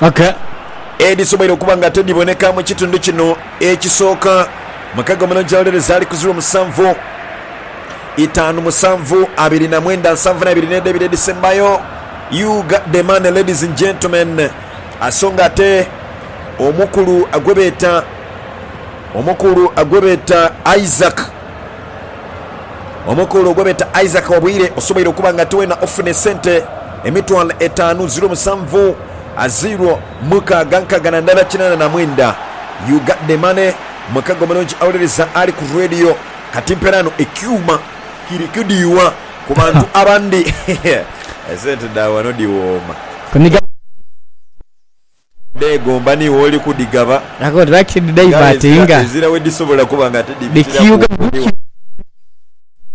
Aka edhisoboire okuba nga tedhiboneka mu kitundu kino ekisooka. Mukaga omulungi awolereza ali ku ziro musanvu itaanu musanvu abiri na mwenda nsanvu na ibiri n'edho ebiri edhisembayo. Ug the man ladies and gentlemen aso nga ate omukulu gwebeeta omukulu gwebeeta Isaac Omukulu gwe beeta Isaac Wabwire osoboire okuba nga ate weena ofuna esente emitwalo etaanu ziro musanvu a ziro mukaaga nkaaga na ndala kinaana na mwenda. You got the money. Mukago mulungi awuliriza ali ku Radio. Kati mperaano ekyuuma kiri kudhiwa ku bantu abandi. Esente dha wano dhiwooma. Odheegomba ni wooli kudhigaba, ng'aye ezira, ezira we dhisobola kuba nga tidhibitiraku bukumi wano.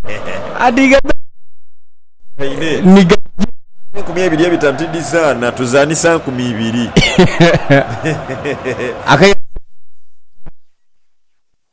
Hehe. Ate enkumi ebiri ebitano tidhizaana, tuzaanisa nkumi ibiri. Hehehehe.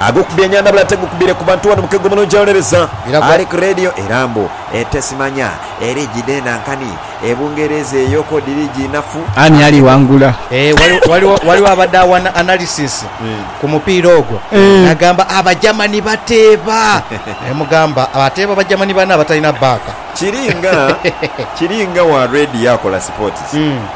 Agokubye enyandhabula ate gukubire ku bantu wano mukego mulungi awonereza ali ku radio era mbu ente simanya eri gidenda nkani e Bungereza eyo ko dhiri ginafu Ani ali wangula? Eeh waliwo waliwo abadde awana analysis ku mupiira ogwo nagamba aba Germany bateeba nemugamba ateeba ba Germany bane abatalina baaka. Kiri nga kiri nga wa radio akola sipootisi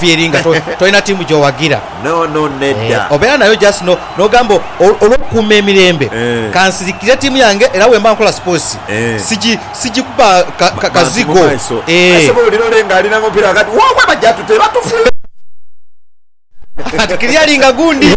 Fieri nga tolina tiimu gy'owagira. No, no, nedda. Obeera nayo just no, n'ogamba olw'okukuuma emirembe, kansirikire tiimu yange era bwemba nkola sipoosi sigi, sigikuba kazigo. Bantu mu maiso. Aise bw'olira ole nga alina omupiira ghagati, woowe baja tute, batufile. Kati clearinga gundi.